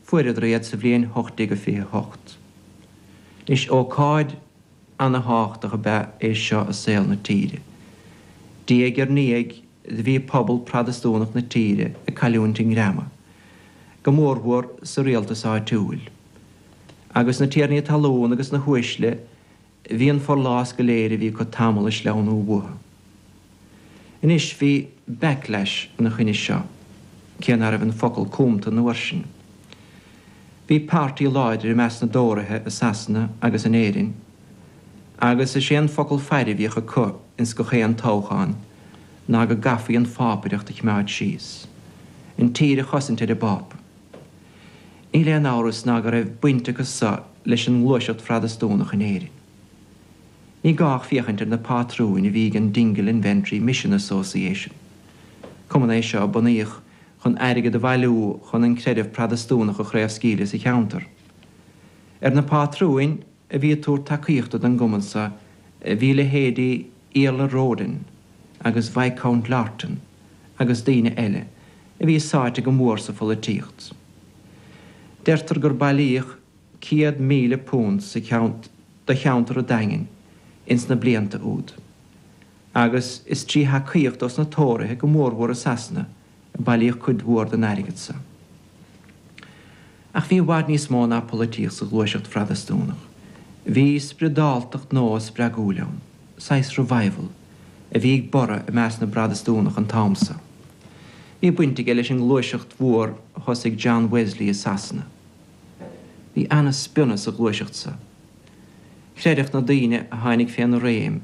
Fuaireadar iad sa bhliain 1828. Is ócáid an-thábhachtach ab ea é seo i saol na tíre. Diaidh ar ndiaidh do bhí pobal Protastúnach na tíre ag cailliúint a ngreama, go mórmhór sa rialtas áitiúil, agus na tiarnaí talún agus na huaisle Bhí an forlás go léir a bhí acu tamall ag sleamhnú uathu. Anois bhí backlash ina choinne seo, cé ná raibh an focal cumtha an uair sin. Bhí páirtí láidir i measc na dTóraithe i Sasana agus in Éirinn, agus is é an focal faire a bhíodh acu ins gach aon toghchán ná go gcaithfí an phápaireacht a choimeád síos, an tír a chosaint ar an bPápa. Níl aon amhras ná go raibh baint acu so leis an ngluaiseacht Phrotastúnach in Éirinn. Ní gá ach féachaint ar na pátrúin a bhí ag an Dingle and Ventry Mission Association. Cumann é seo a bunaíodh chun airgead a bhailiú chun an creideamh Protastúnach a chraobhscaoileadh sa cheantar. Ar na pátrúin a bhí ag tabhairt tacaíochta don gcumann so bhí leithéidí Iarla Roden agus Viscount Lorton. agus daoine eile a bhí sáite go mór sa pholaitíocht. Deirtear gur bailíodh £100,000 do cheantar an Daingin ins na blianta úd, agus is trí thacaíocht ó sna Tóraithe go mórmhór i Sasana a bailíodh cuid mhór den airgead sa. Ach bhí i bhfad níos mó ná polaitíocht sa ghluaiseacht Phrotastúnach. Bhí spriodáltacht nua spreagúil ann, saghas revival, a bhí ag borradh i measc na bProtastúnach an t-am sa. Bhí baint aige leis an ngluaiseacht mhór a thosaigh John Wesley i Sasana. Bhí ana-spionnadh sa ghluaiseacht sa. Chreideadh na daoine a tháinig féna réim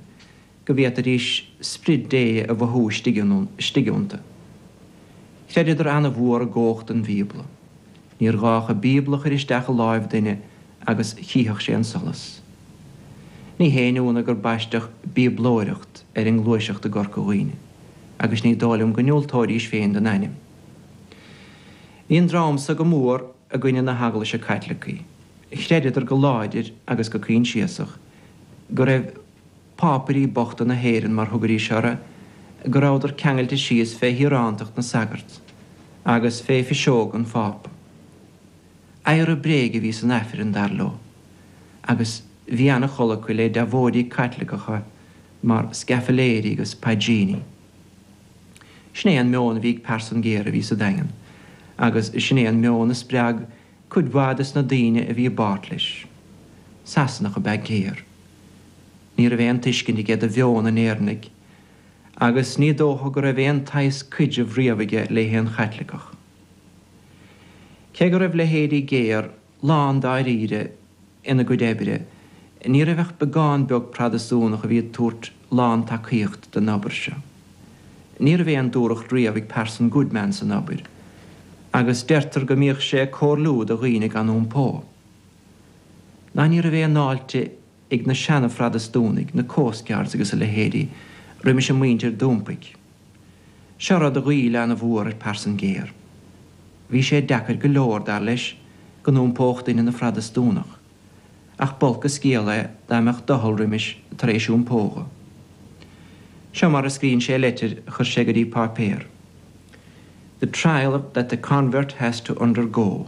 go bhféadfaidís Sprid Dé a mhothú istigh iontu. Chreideadar an-mhór i gcomhacht an Bhíobla. Níor ghá ach an Bíobla a chur isteach i láimh duine agus chífeadh sé an solas. Ní haon ionadh gur baisteadh 'Bíoblóireacht' ar an ngluaiseacht i gCorca Dhuibhne, agus ní dóigh liom go ndiúltóidís féin don ainm. Bhí an dream so go mór i gcoinne na hEaglaise Caitlicí. Chreideadar go láidir agus go coinsiasach go raibh. Pápairí bochta na hÉireann, mar thugaidís orthu, go rabhadar ceangailte síos fé thíorántacht na sagart agus fé phiseog an Phápa. Adhradh bréige a bhí san Aifreann, dar leo, agus bhí an-chol acu le deabhóidí Caitliceacha mar scaifléirí agus paidríní. Sin é an meon a bhí ag Parson Gayer a bhí sa Daingean agus sin é an meon a spreag cuid mhaith de sna daoine a bhí i bpáirt leis. Sasanach ab ea Gayer. Ní raibh aon tuiscint aige do mheon an Éireannaigh, agus ní dócha go raibh aon tsaghas cuidrimh riamh aige le haon Chaitliceach. Cé go raibh leithéidí Gayer lán dáiríre, ina gcuid oibre, ní raibh ach beagán beag Protastúnach a bhí ag tabhairt lán-tacaíocht don obair seo. Ní raibh aon dúthracht riamh ag Parson Goodman san obair, agus deirtear go mbíodh sé ag comhairliú do dhaoine gan iompó. Ná ní raibh aon fháilte ag na seana-Phrotastúnaigh, na Coast Guards agus a leithéidí, roimis an muintir d'iompaigh. Seo rud a ghoill ana-mhór ar Parson Gayer. Bhí sé deacair go leor, dar leis, go n-iompódh duine ina Phrotastúnach, ach b'olc an scéal é dá mbeadh doicheall roimis tar éis iompó dhó. Seo mar a scríonn sé i leitir a chuir sé go dtí páipéar, The trial that the convert has to undergo,